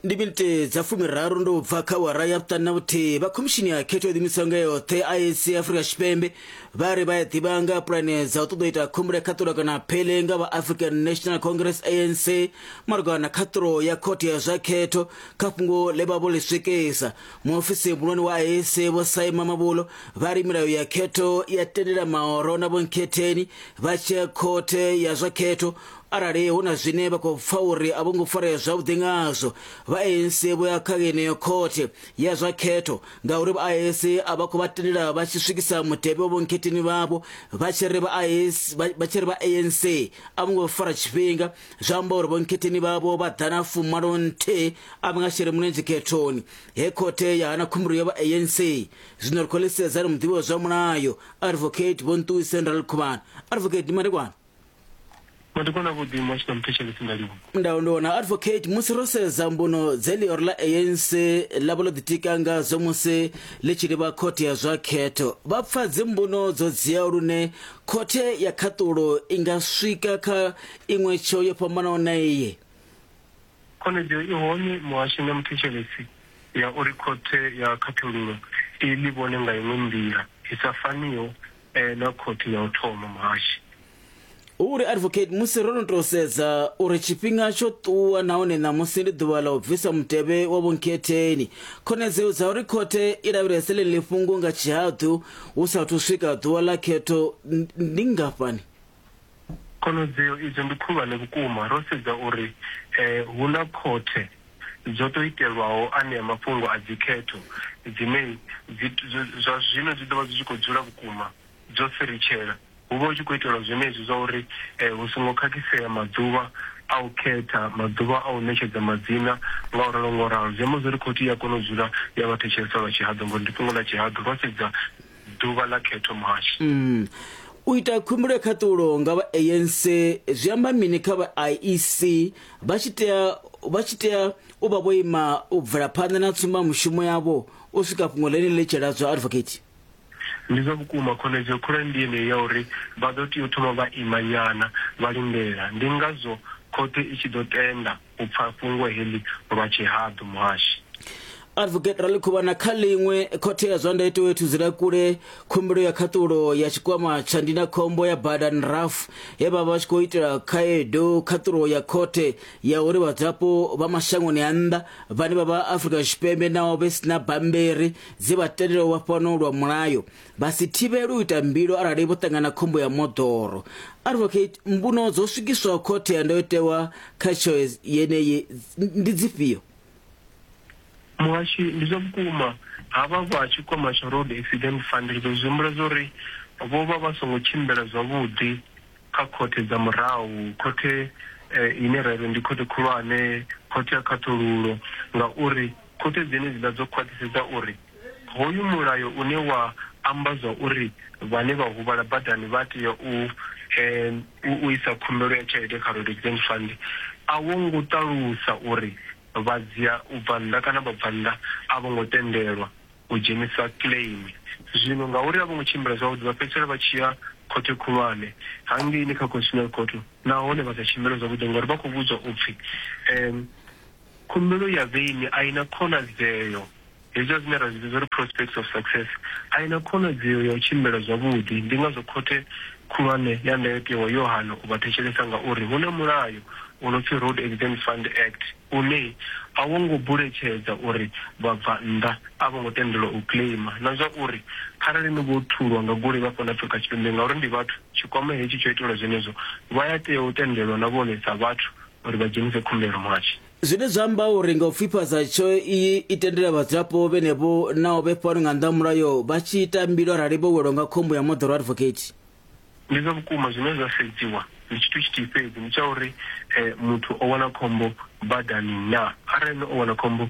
ndi minite dza fumiraru ndo bva kha wara ya vhuṱanu na vhuthihi vha khomishini ya khetho yo ḓimisaho nga yoṱhe iac afrika tshipembe vha ri vha ya ḓivha nga pulane dza u ṱoḓa u ita khombole khaṱulo kana phele nga vha african national congress anc malugana na khaṱulo ya khothe ya zwa khetho kha fhungo ḽe vha vho ḽi swikisa muofisi muhulwane wa iac vho saima mabulo vha ri milayo ya khetho ya tendela mahoro na vhonkhetheni vha tshia khothe ya zwa khetho arali hu na zwine vha khou pfa uri a vho ngo farea zwavhuḓi ngazwo vha anc vho ya kha yeneyo khothe ya zwa khetho ngauri vha anc a vha khou vha tendela vha tshi swikisa mutevhe wa vhonkhetheni vhavho vha tshi ri vha anc a vho ngo fara tshifhinga zwi amba uri vhonkhetheni vhavho vha ḓa na fumalo nthihi a vha nga shele mulenzhe khethoni he khothe ya hana khumbelo ya vha anc zwino ri khou ḽisedza ri muḓivhi wa zwa mulayo advocate vho nṱuwiseni ra ḽikhuvhana advocate ndi madekwana Madekwana avhuḓi muhasho na muthetshelesi nga livhuwa. Ndau ndi wana advocate musi ro sedza mbuno dze ḽioro ḽa ANC ḽa vha ḽo ḓitika ngadzo musi ḽi tshi livha khothe ya zwa khetho vha pfa dzimbuno dzo dziaho lune khothe ya khaṱulo i nga swika kha iṅwe tsheo yo fhambanaho na iyi Khonadzeo i hone muhasho na muthetshelesi ya uri khothe ya khaṱhululo i ḽi vhone nga iṅwe nḓila i sa faniho e na khothe ya u thoma muhashi. U ri, Advocate, musi ro no tou sedza uri tshifhinga tsho ṱuwa nahone ṋamusi ndi ḓuvha ḽa u bvisa mutevhe wa vhonkhetheni, khonadzeo dza uri khothe i lavhelese ḽeneḽi fhungo nga tshihaḓu hu sa athu swika ḓuvha ḽa khetho ndi nngafhani? Khonadzeo idzo ndi khulwane vhukuma ro sedza uri hu na khothe dzo tou itelwaho anea mafhungo a dzikhetho dzine dzi, zwa zwino dzi ḓo vha dzi tshi khou dzula vhukuma dzo firitshela. Hu vha hu tshi khou itelwa zwenezwi zwa uri eh, hu songo khakhisea maḓuvha a u khetha, maḓuvha a u ṋetshedza madzina nga u ralo nga u ralo. Zwi amba zwori khothe i a kona u dzula ya vha thetshelesa lwa tshihaḓu, ngori ndi fhungo ḽa tshihaḓu ro sedza ḓuvha ḽa khetho March. Mm. U ita khumbulo ya khaṱulo nga vha ANC zwi amba mini kha vha IEC vha tshi tea vha tshi tea u vha vho ima u bvela phanḓa na tsumba mushumo yavho u swika fhungo ḽeneḽi ḽi tshi ladzwa advocate? Ndi zwa vhukuma khonedzeo khulwane ndi yeneyi ya uri vha ḓo tea u thoma vha imanyana vha lindela. Ndi ngazwo khothe i tshi ḓo tenda u pfa fhungo heḽi lwa tshihaḓu, Muhashi. Advocate Raḽikhuvhana kha ḽiṅwe, Khothe ya zwa ndayotewa i thudzela kule khumbelo ya khaṱulo ya tshikwama tsha ndindakhombo ya bada NRAF ye vha vha vha tshi khou itela khaedu khaṱulo ya khothe ya uri vhadzulapo vha mashangoni a nnḓa vhane vha vha Afrika Tshipembe naho vhe sina bammbiri dzi vha tendela u vha fhano lwa mulayo vha si thivhele u ita mbilo arali vho ṱangana khombo ya moḓoro advocate mbuno dzo swikiswaho khothe ya ndayotewa kha tsheo yeneyi ndi dzifhio muhashi ndi zwa vhukuma havha vha tshikwama tsha road accident fund ri ḓo zwi humbula zwa uri vho vha vha songo tshimbila zwavhuḓi kha khothe dza murahu khothe eh, ine ra ri ndi khothe khulwane khothe ya khaṱhululo ngauri khothe dzenedzi ḽa dzo khwaṱhisedza uri Hoyu mulayo une wa amba zwa uri vhane vha huvhala badani vha tea u u isa khumbelo ya tshelede kha Road Accident Fund a wo ngo ṱalusa uri vha dzia u bva nnḓa kana vha bva nnḓa a vho ngo tendelwa u dzhenisa claim. Zwino ngauri a vho ngo tshimbila zwavhuḓi, vha fhedzisela vha tshi ya Khothe Khulwane hangeini kha Constitutional Court nahone vha sa tshimbile zwavhuḓi ngauri vha khou vhudzwa u pfi. Khumbelo ya veini a i na khonadzeo, hezwiḽa zwine ra zwi vhidza uri prospects of success, a i na khonadzeo ya u tshimbila zwavhuḓi. Ndi ngazwo Khothe Khulwane ya Ndayotewa yo hana u vha thetshelesa ngauri hu na mulayo u no pfi Road Accident Fund Act une a wo ngo buletshedza uri vhabvannḓa a vho ngo tendelwa u kiḽeima na zwa uri kharali ni vho thulwa nga goloi vha fhano Afrika Tshipembe ngauri ndi vhathu, tshikwama hetshi tsho itelwa zwenezwo, vha ya tea u tendelwa na vhone sa vhathu uri vha dzhenise khumbelo muhasho. Zwine zwa amba uri nga u pfifhadza tsheo iyi i tendela vhadzulapo vhenevho naho vhe fhano nga nnḓa ha mulayo vha tshi ita mbilo arali vho welwa nga khombo ya moḓoro advocate. Ndi zwa vhukuma zwine zwa sedziwa ndi tshithu tshithihi fhedzi, ndi tsha uri eh, muthu o wana khombo badani na. Arali no o wana khombo